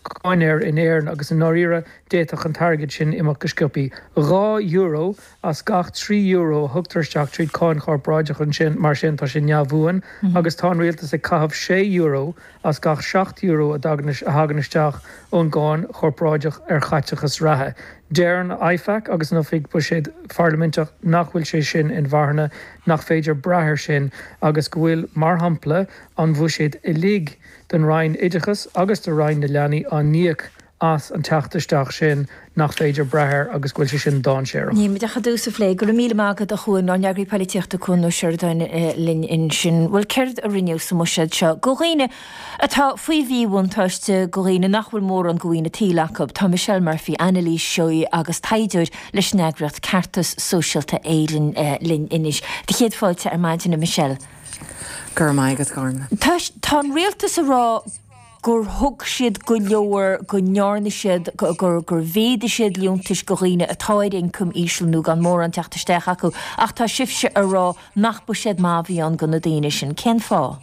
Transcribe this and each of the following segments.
cáin air in Éirinn agus i ndáiríre d'fhéadfadh an t-airgead sin imeacht go sciobthaí. Dhá euro as gach trí euro a thugtar isteach tríd cáin chorporáideach ansin, mar sin tá sé neamhbhuan agus tá an rialtas ag caitheamh sé euro as gach seacht euro a dtagann a thagann isteach ón gcáin chorporáideach ar chaiteachas reatha. Deireann IFAC agus an Oifig Buiséad Pharlaiminteach nach bhfuil sé sin inmharthana, nach féidir brath air sin agus go bhfuil, mar shampla, an buiséad uilig a den Roinn Oideachas agus de Roinn na Leanaí á n-íoc as an teacht isteach sin nach féidir brath air agus go bhfuil sé sin dáinséarach. Níl muid ach i dtús an phlé. Go raibh míle maith agat a Chuáin, ár n-eagraí polaitíochta Cuán Ó Seireadáin linn ansin. Bhuel céard a rinneadh sa mbuiséad seo? Go dhaoine atá faoi mhíbhuntáiste, go dhaoine nach bhfuil mórán go mhaoin an tsaoil acu, tá Michelle Murphy, anailíseoir agus taighdeoir leis an eagraíocht Ceartas Sóisialta Éireann linn anois. Céad fáilte ar maidin a Michelle. Tá an rialtas a rá gur thug siad go leor, go ndearna siad, gur mhéadaigh siad liúntais go dhaoine atá ar ioncam íseal nó gan mórán teacht isteach acu, ach tá sibhse a rá nach buiséad maith a bhí ann go na daoine sin. Cén fáth?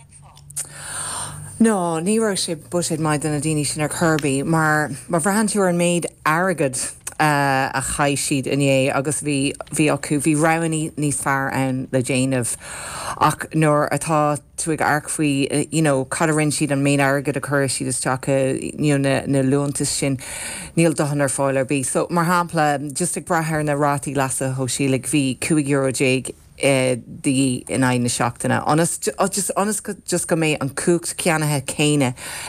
Nó ní raibh sé buiséad maith do na daoine sin ar chor ar bith, mar má bhraitheann tú ar an méid airgead a chaith siad inné agus a bhí acu, bhí roghanna níos fearr ann le déanamh. Ach nuair atá tú ag amharc faoi you know cad a rinne siad, an méid airgid a chuir siad isteach i you know na liúntais sin, níl dóthain ar fáil ar bith. So mar shampla just ag brath ar na rátaí leasa shóisialaigh bhí cúig euro déag de dhíth in aghaidh na seachtaine ionas just ionas go just go mbeidh an cumhacht ceannaithe céanna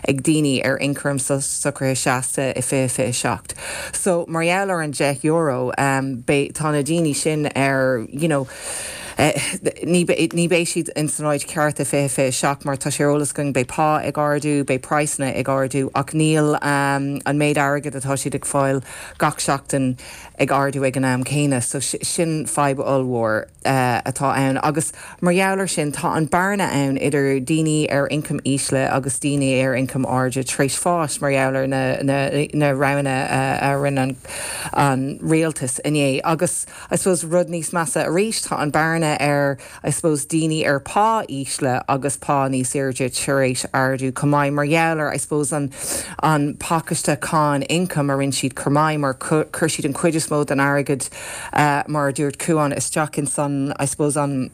ag daoine ar ioncam socraithe seasta i fiche fiche a seacht. So mar gheall ar an deich euro ehm beidh tá na daoine sin ar you know. Ní beidh siad ins an áit ceart i 2027 mar tá sé ar eolas againn beidh pá ag ardú, beidh praghsanna ag ardú ach níl an méid airgead atá siad ag fáil gach seachtain ag ardú ag an am céanna so sin fadhb ollmhór atá ann agus mar gheall ar sin tá an bearna ann idir daoine ar ioncam ísle agus daoine ar ioncam airde tar éis fás mar gheall ar na na roghanna a rinne an rialtas inné agus. I suppose rud níos measa arís, tá an bearna ar I suppose daoine ar pá ísle agus pá níos airde tar éis ardú chomh maith mar gheall ar I suppose an an pacáiste cáin ioncaim a rinne siad chomh maith mar chuir siad an chuid is mó den airgead mar a dúirt Cuán isteach in san I suppose an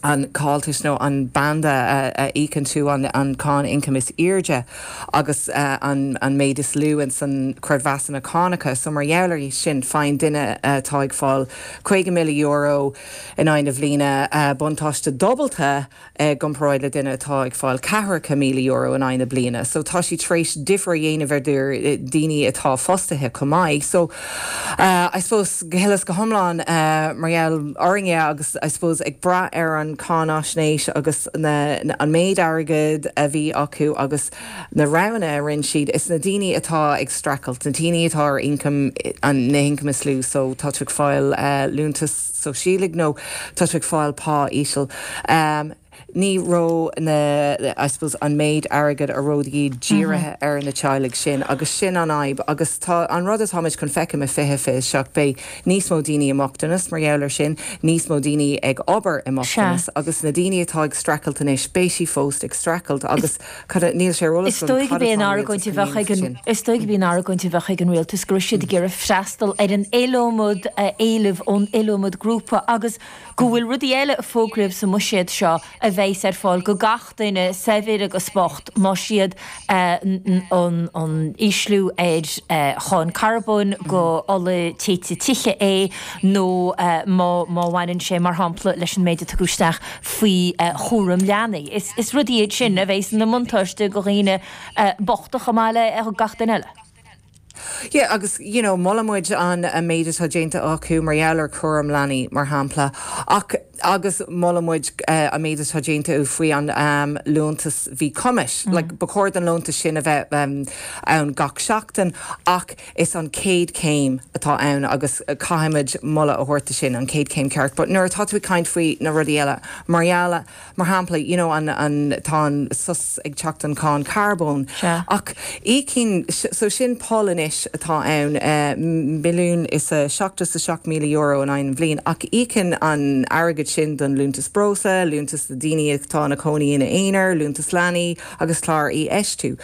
an Comhaltais nó an Banda a íocann tú an Cáin Ioncaim is aoirde agus an méid is lú ins an Creidmheasanna Cánacha. So mar gheall ar sin faigheann duine atá ag fáil €50,000 in aghaidh na bhliana buntáiste dubailte i gcomparáid le duine atá ag fáil €400,000 in aghaidh na bliana. So tá siad tar éis difir a dhéanamh ar daoine atá fostaithe chomh maith. So I suppose. go huile 's go hiomlán mar gheall air sin agus I suppose ag brath ar an cáinaisnéis agus na, an méid airgid a bhí acu agus na roghanna a rinne siad. Is na daoine atá ag streachailt, na daoine atá ar ioncam, na hioncam is lú, so tá tú ag fáil liúntas sóisialaigh nó tá tú ag fáil pá íseal. Ní raibh na, I suppose, an méid airgead a raibh de dhíth dírithe ar na teaghlaigh sin agus sin an fhadhb agus tá an rud atáimid chun feiceáil i 2027 beidh níos mó daoine i mbochtanas mar gheall ar sin, níos mó daoine ag obair i mbochtanas agus na daoine atá ag streachailt anois beidh sí fós ag streachailt agus cad a, níl sé ar eolas agam cad atá an rialtas chun a dhéanamh faoi sin. Is dóigh go bé an argóint a bheadh ag an rialtas go raibh siad ag iarraidh freastal ar an iliomad éilimh ón iliomad grúpa agus, go bhfuil rudaí eile a fógraíodh sa mbuiséad seo a bheas ar fáil go gach duine saibhir agus bocht más iad an ísliú ar cháin carbóin go ola téite tí é nó má bhaineann sé, mar shampla, leis an méid a tugadh isteach faoi chúram leanaí. Is rudaí iad sin a bheas ina mbuntáiste go dhaoine bochta chomh maith le gach duine eile. Yeah agus you know molann muid an méid atá déanta acu mar gheall ar chúram leanaí mar shampla ach agus molann muid an méid atá déanta acu faoi an liúntas mhíchumais. Like ba chóir don liúntas sin a bheith ann gach seachtain ach is é an chéad chéim atá ann agus caithfidh muid moladh a thabhairt do sin, an chéad chéim ceart but nuair atá tú ag caint faoi na rudaí eile mar gheall mar shampla you know an an tá an sos ag teacht don cháin carbón ach íocann so sin poll anois atá ann milliún is a seacht is a seacht míle euro in aghaidh an bhliain ach íocann an airgead sin don liúntas breosla liúntas do daoine atá ina cónaí ina aonar liúntas leanaí agus clár iarfheistiú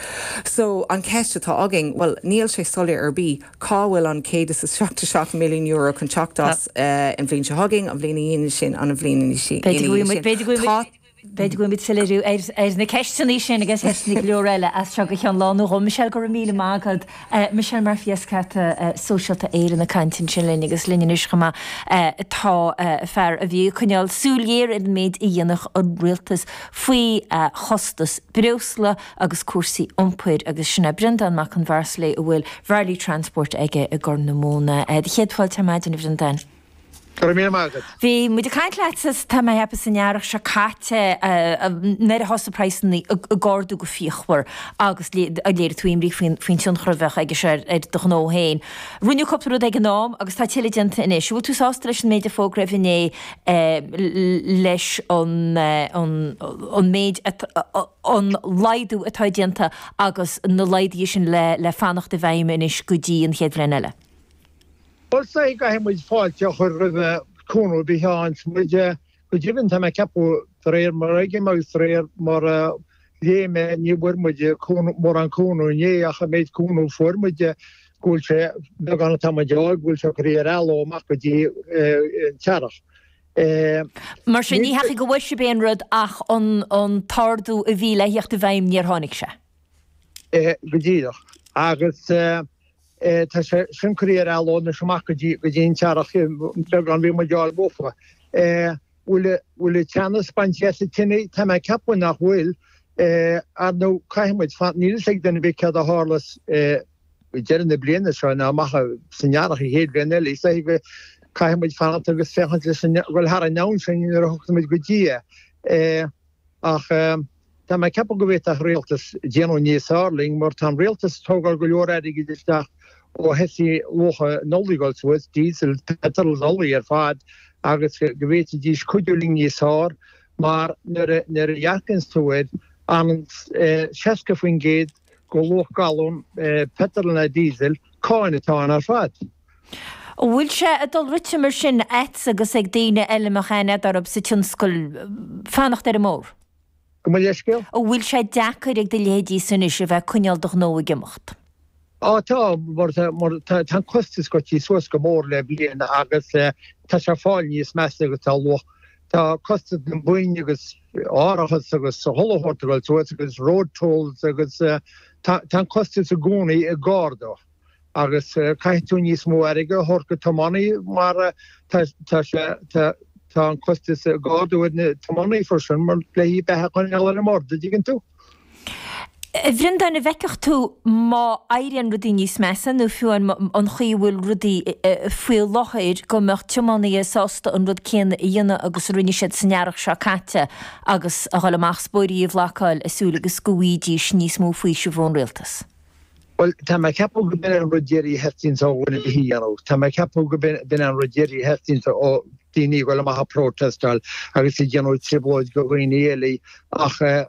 so an ceist atá againn bhuel níl sé soiléir ar bith cá bhfuil an €107 milliún chun teacht as an bhliain seo chugainn, an bhliain ina dhiaidh sin, an bhliain ina dhiaidh sin? B'fhéidir go bhfaighidh muid soiléiriú ar na ceisteanna sin agus ceisteanna go leor eile as seo go ceann lá nó dhó. Michelle, go raibh míle maith agat. Michelle Murphy as Ceartas Sóisialta Éireann ag caint ansin linn agus linn anois chomh maith tá fear a bhí ag coinneáil súil ghéar ar an méid a dhéanfadh an rialtas faoi chostas breosla, agus cúrsaí iompair agus sin é Breandán Mac an Bhearshúiligh a bhfuil Varley Transport aige i gCorr na Móna. Do chéad fáilte ar maidin a Bhreandáin. Go raibh míle maith agat. Bhí muid ag caint leat sa tá mé ag ceapadh san earrach seo caite nuair a thosaigh praghsanna ag ardú go fíochmhar agus léirigh tú imní faoin faoin tionchar a bheadh aige seo ar do ghnó féin. Rinneadh cúpla rud ag an am agus tá tuilleadh déanta anois. An bhfuil tú sásta leis an méid a fógraíodh inné leis an an méid an laghdú atá déanta agus na laghdaithe sin le fanacht i bhfeidhm anois go dtí an chéad bhliain eile. Bhuel is dóigh go gcaithfidh muid fáilte a chur roimh cúnamh ar bith a fhaigheann muid. Go deimhin, tá mé ag ceapadh, de réir mar a thuigim agus de réir mar a léigh mé, níor bhfuair muid mórán cúnamh inné ach an méid cúnamh a fuair muid, go bhfuil sé beagán atá muid a fháil, go bhfuil sé ag curtha ar athló amach go dtí an t-earrach. Mar sin, ní hé an chaoi go bhfuil sibh ag fáil aon rud ach an t-ardú a bhí le thíocht i bhfeidhm níor tháinig sé. Go díreach. Agus tá sé sin curtha ar athló anois amach go dtí an t-earrach beagán bhí muid a fháil uathu. Bhfuil an teannas bainte as an tine? Tá mé ag ceapadh nach bhfuil. Ar ndóigh caithfidh muid, níl fhios ag duine ar bith céard a tharlós Ag deireadh na bliana seo ná amach san earrach an chéad bhliain eile, is dóigh go gcaithfidh muid fanacht agus féachaint leis an droichead a thrasnú sin nuair a thiocfaidh muid go dtí é. Ach tá mé ag ceapadh go bhféadfadh an Rialtas déanamh níos fearr linn mar tá an Rialtas ag tógáil go leor airgid isteach ó thosaigh luach na n-olaí dhul suas, díosal, petrol, is ola ar fad agus go bhféadfaidís cuidiú linn níos fearr mar nuair a bhreathnaíonns tú air, tá 60% go luach galún petrol ná diesel, cáin atá ann ar fad. An bhfuil sé ag dul rite mar sin leatsa agus ag daoine eile a mbeadh aithne agat orthu sa tionscal fanacht ar an mbóthar? Gabh mo leithscéal? An bhfuil sé deacair ag do leithéidí anois a bheith ag coinneáil do ghnó ag imeacht? Á tá, mar tá an costas gaibhte suas go mór le bliain agus tá sé ag fáil níos measa agus tá luach, tá costas na boinn agus, árachas agus chuile shórt ag dul suas agus road tolls agus tá an costas i gcónaí ag ardú agus caithfidh tú níos mó airgid a thabhairt go thiománaí mar tá tá sé tá tá an costas ag ardú ar na tiománaí freisin mar le haghaidh beatha a choinneáil ar an mbord an dtuigeann tú. A Bhreandáin, an bhfeicfeadh tú má éiríonn rudaí níos measa nó fiú an chaoi a bhfuil rudaí faoi láthair go mbeadh tiománaithe sásta an rud céanna a dhéanamh agus a rinne siad san earrach seo caite agus a dhul amach 's bóithre a bhlocáil a' súil agus go bhfaighidís níos mó faoisimh ón Rialtas? Bhuel, tá mé a' ceapadh go b'in an rud deiridh a theastaíonns ó dhuine ar bith a dhéanamh. Tá mé a' ceapadh go b'in an rud deiridh a theastaíonns ó dhaoiní a dhul amach a' prótestáil agus a' déanamh trioblóid go dhaoiní eile ach eh,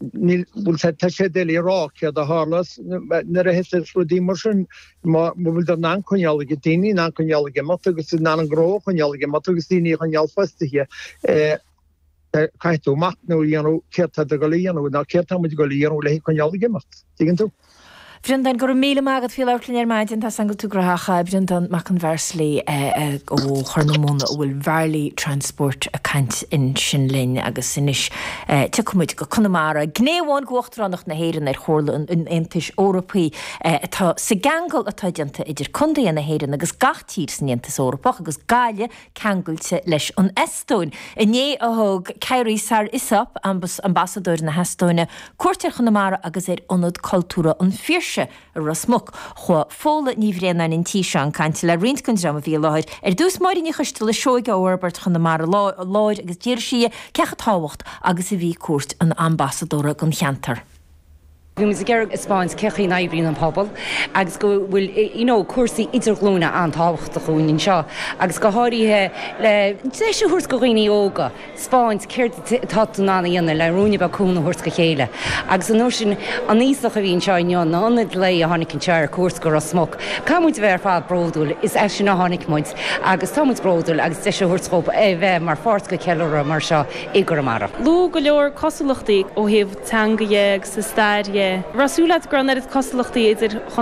níl, bhuel tá, tá sé doiligh a rá céard a tharlós nuair a thitfeas rudaí mar sin, má, mura bhfuil tú in ann coinneáil ag, daoine in ann coinneáil ag imeacht agus in ann an gnó a choinneáil ag imeacht agus daoine a choinneáil fostaithe, eh, caithfidh tú machnamh a dhéanamh céard tá tú ag dul a dhéanamh, nó céard tá muid ag dul a dhéanamh le haghaidh coinneáil ag imeacht, dtuigeann tú? Bhreandán, Go raibh míle maith agat, faoi labhairt linn ar maidin, tá a fhios againn go bhfuil tú graitheach, Breandán Mac an Bhearslaí ó Chorr na Móna a bhfuil Varley Transport ag caint ansin linn agus anois tiocfaidh muid go Conamara. Gné amháin go Uachtaránacht na hÉireann ar Chomhairle an Aontais Eorpaí atá sa gceangal atá déanta idir Contaetha na hÉireann agus gach tír san Aontas Eorpach agus Gaillimh, ceangailte leis an Estóin. Inné a thug Kairi Saar-Isop, Ambasadóir na hEastóine, cuairt ar Chonamara agus ar Ionad Cultúrtha an Phiarsaigh i Ros Muc. Chuaigh Fódhla Ní Bhraonáin an tí seo chun cainte le roinnt den dream a bhí i láthair. Ar dtús Máirín Ní Choisdealbha Seoige ó Fhorbairt Chonamara Láir agus d'fhiafraigh sí di cé chomh tábhachtach agus a bhí cuairt an Ambasadóra don cheantar. Bhí muid ag iarraidh a 'speáint cén chaoi a n-oibríonn an pobal agus go bhfuil you know cúrsaí idirghlúine an-tábhachtach dhúinn anseo agus go háiríthe le deis a thabhairt go dhaoine óga 'speáint céard atá tú in ann a dhéanamh le ruainne beag cúnamh a thabhairt go chéile agus an uair sin an aosach a bhí anseo inniu na ionaid lae a tháinig anseo ar cuairt go Ros Muc caithfidh muid a bheith ar fad bródúil is as sin a tháinig muid agus tá muid bródúil agus deis a thabhairt dhób a bheith mar pháirt go ceiliúradh mar seo i gConamara. Luadh go leor cosúlachtaí ó thaobh teanga dhe agus stair dhe. Raibh súil agat go raibh an oiread cosúlachtaí idir Chonamara.